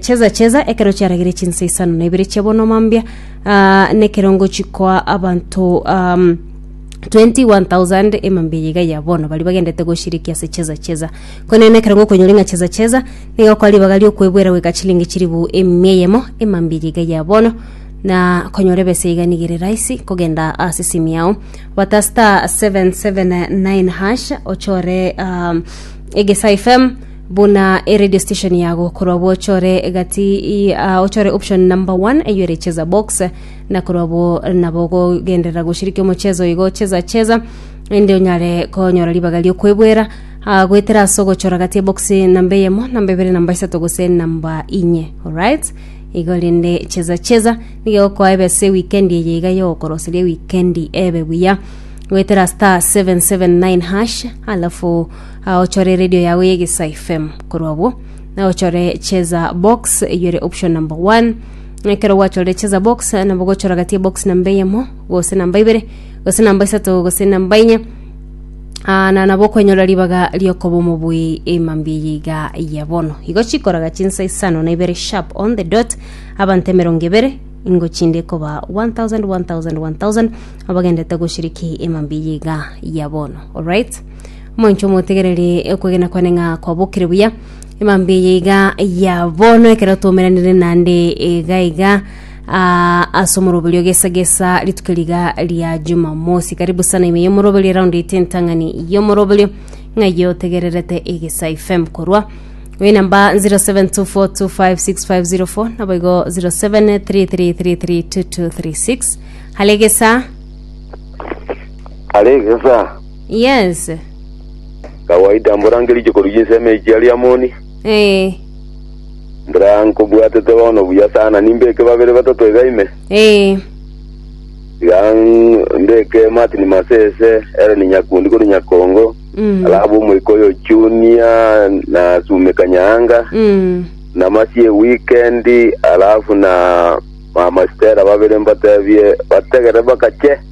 Cheza cheza ekero chiarageire chinsa isano na ibere chia bono mambia ah, nekerongo chikoa abanto um, 21,000 emambia yiga ya bono bari bagendete goshiriki ase cheza cheza konene ekerongo okonyori ng'a cheza cheza nigo kwa ribaga riokwebwera goika chilingi chiribu emia eyemo emambia yiga ya bono na konyora ebesa iga nigo ere rahisi kogenda ase simu yao bata star 779 hash ochore um, egesa fm Buna eredio station yago korwa bwochore gati ochore option number one eyo ere cheza box na korwa bo nabo gogenderera goshiriki omochezo igo cheza cheza ende onyare konyora ribaga riokwebwera gwetera ase ogochora gati ebox namba eyemo namba ebere namba isato gose namba inye alright igo rende cheza cheza nigo egokoa ebe ase weekend eye iga yogokoroseria weekend ebe buya gwetera star 779 hash alafu Aochore eredio yago y'egesai FM. Korwa obwo, naochore cheza box eyio ere option number one. Ekero gwachorire cheza box, nabo gochora gati ya box namba eyemo, gose namba ibere, gose namba isato, gose namba inye. Ah, na nabo okwenyora ribaga riokoba omobui emambia eye iga ya bono. Igo chikoraga chinsa isano na ibere sharp on the dot, abanto emerongo ebere, ingo chinde koba 1000 1000 1000 abagendete goshiriki emambia eye iga ya bono. Alright? Omonto omotegererie okwegena kwane ng'a kwabokire buya. Emambia eye iga ya bono ekero twaumeranire nande iga iga ah, ase omoroberio gesa gesa rituko riga ria jumamosi karibu sana ime y'omoroberio eraundi ite entang'ani y'omoroberio ng'aiyo otegererete egesa fm korwa Oyo namba 0724256504 nabo igo 0733332236 halegesa aregesa Yense. Kawaida mborange richiko riu chinsemo echi chiaria amoni. Eh. Mbora nkobwatete bono buya sana nimbeke babere batato iga ime. Eh. Iga ng- mbeke Martin Masese, Ellen Nyakundi kori Nyakongo, Mm. alabu omoika oyo Junior na Sume Kanyanga, Mm. na Masie Weekend, alafu na Mama Stella babere mbatebie bategere bakache.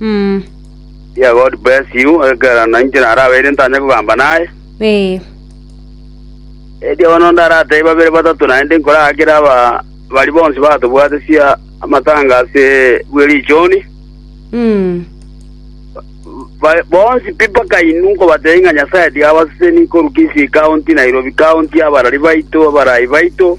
Mm. Dear God bless you, ekero nainche narabeire ntanye kogamba naye. Eh. Erio bono ndaratebe babere batato naende nkorakera aba bari bonsi batobwate sia amatanga ase bwe richoni. Mm. Ba- bonsi pi mpaka inu nkobatebe ng'a Nyasaye tiga abaseseni korwa Kisii County, Nairobi County, abarari baito, abarai baito.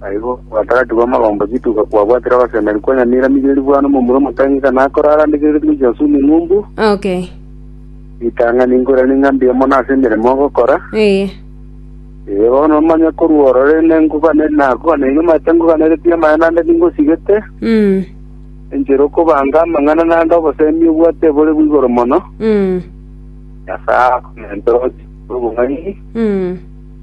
Na igo obotakatifu bw'amagomba chituko kwabwatire ogosemeria kwa nyamira migeri bwa nomomura omotang'e ng'a nakore arandegereretie gochia ase omong'umbu, Okay. ritang'ani nkoiranie ng'a mbuya mono ase emeremo ogokora. Ee. Ee, bono omanye korwa orore nengokwane nakogana inwe maete ngokaneretie amaya naende ningosigete, Mm. enchera okobanga amang'ana naende obosemi obwate ebore bw'igoro mono, Mm. Nyasae akomentora ogochika obong'aini, Mm.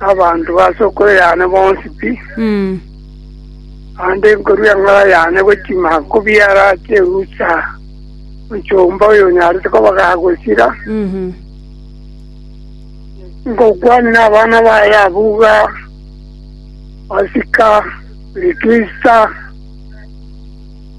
Abanto base okwe yane bonsi pi, naende nkorue eng'ora yane gochia maako biara ch'erusa omochomba oyonyarete koba gagosira. Nkokwanire abana baye abwo iga, Pasika, Krisimasi.